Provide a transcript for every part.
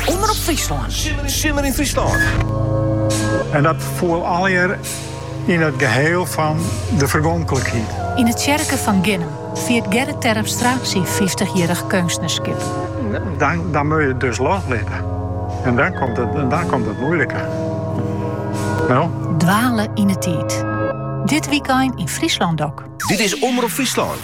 Omrop Fryslân. Simmer yn Fryslân. En dat foel allegear yn it geheal fan de fergonklikheid. Yn de tsjerke fan Ginnum fiert Gerrit Terpstra syn fyftichjierrich keunstnerskip. Dan moat je it dus loslitte. En dan komt it moeilike. No? Dwale yn 'e tiid. Dit wykein yn Fryslân Doc. Dit is Omrop Fryslân.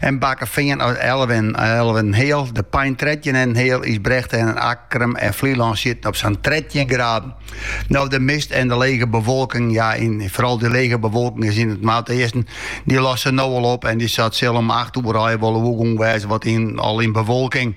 En Bakkefean is alve, alve en heal. De Pein trettjin en heal is Drachten en Akkrum en Flylân sitte op sa'n trettjin graden. No de mist en de lege bewolking, ja en foaral dy lege bewolking sa yn it noardeasten, dy losse no al op en dy sat sil om acht oere hinne wol oergong wêze wat yn al yn bewolking.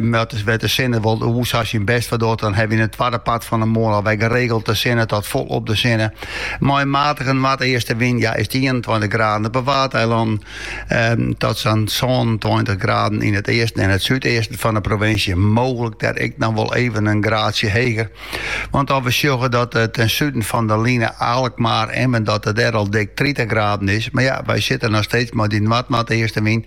Mar omdat de sinne wol oer sa syn best foar docht, dan hawwe wy yn it twadde part fan 'e moarn alwer geregeld de sinne ta folop de sinne. Mei in matige noardeaste wyn ja wurdt it ienentweintich graden op 'e Waadeilannen ta sa'n sânentweintich graden yn it easten en it súdeasten fan 'e provinsje, mooglik dêr ek noch wol even in graadsje heger. Want as we sjogge dat ten suden fan de line Alkmaar, Emmen, dat it dêr al dik tritich graden is, mar ja, wy sitte noch steeds mei dy noardnoardeaste wyn.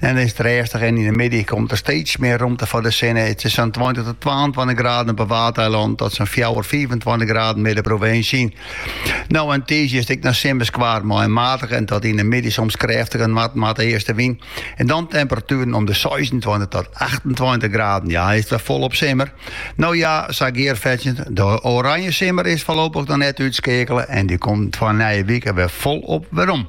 En is it rêstich en yn de middei komt der steeds mear romte foar de sinne. It sil sa'n tweintich tot twaentweintich graden op 'e Waadeilannen tot sa'n fjouwer, fiifentweintich graden mear de provinsje yn. No en tiisdei is it ek noch simmersk waar mei in matige en dan yn de middei soms krêftige noard-noardeastewyn. En dan temperatueren om de seisentweintich tot achtentweintich graden. Ja, is it wer folop simmer? No ja, sa gearfetsjend, de Oranje simmer is foarlopich noch net útskeakele en dy komt foar nije wike wer folop werom.